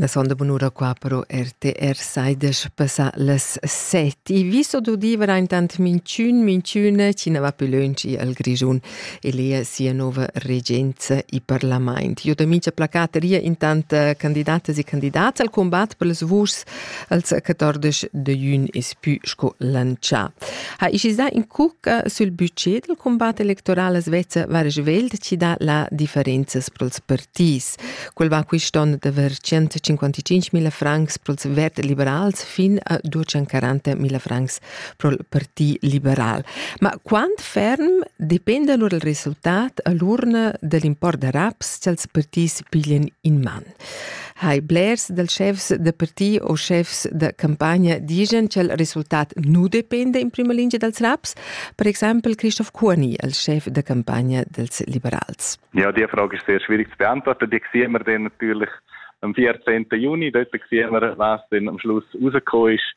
La sonda bunura qua però RTR saidesch passa las set. I viso d'udiver intant minchün, minchüne chi ne va più lönci al Grischun e lea sia nova regenza e parlament. Jo da mincha placat ria intant candidatas e candidats al combat per les vuschs als 14 de jun es pü sco lantschà. Ha ischiza in cucca sul budget del combat electoral a Svezia var svelt ci dà la differenzas pro'ls partits. Quel va quist'on da ver 155.000 francs pro'ls vert liberals fin a 240.000 francs pro'l parti liberal. Ma quant ferm dependa lur il resultat a l'urna dell'import da raps ch'als partits piglien in man? hai blers dals chefs da parti o chefs da campagna digen ch'el resultat nu dependa in prima lingia dals raps, per exempel Christoph Kurni, il chef da campagna dels liberals. Ja, die Frage ist sehr schwierig zu beantworten. Die sehen wir dann natürlich am 14. Juni. Dort sehen wir, was dann am Schluss rausgekommen ist.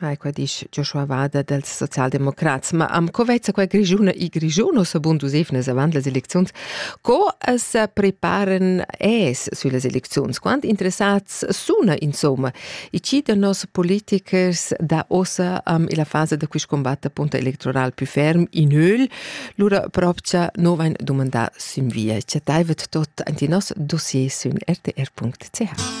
Hai qua disch Joshua Wader dels Sozialdemokrats. Ma am co vezza qua Grigiuna i Grigiuno sabund usefnas avant las elecziuns? Co as preparen es süllas elecziuns? Quant interessats suna insomma i chi da nos politikers da ossa am illa fasa da quist combatt appunto electoral più ferm in öl? Lura propcha no vain dumandà sün via. Chattaivet tot ant in nos dossier sün rtr.ch.